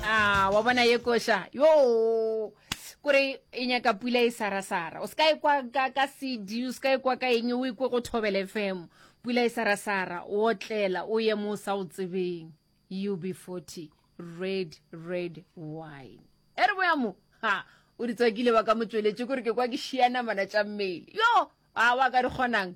a wa bona ye koša yo kore e nyaka pula e sarasara o se ka e kwa ka, ka cd o se ka e kwa ka eng o e kwe go thobele fm pula e sarasara o otlela o ye mo o sa o tsebeng ub 40 red red wine e re boya mo ha o di tswakile ba ka motsweletše kore ke kwa ke šianamana tša mmele yo a wa ka di kgonang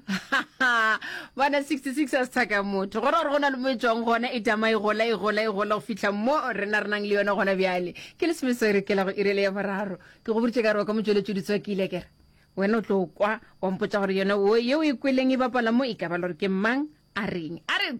bana 66 a sethaka motho gore gore go na le mo e tswang gona e tama e gola e gola e gola go fitlha mo rena re nang le yone gona bjale ke le semese re kela go irele ya boraro ke go boditse ka re wa ka motsweletso ditswa ke ile kere wena o tlo kwa wa mpotsa gore yone yeo e kweleng e bapala mo e ka ba le gore ke mang a reng a re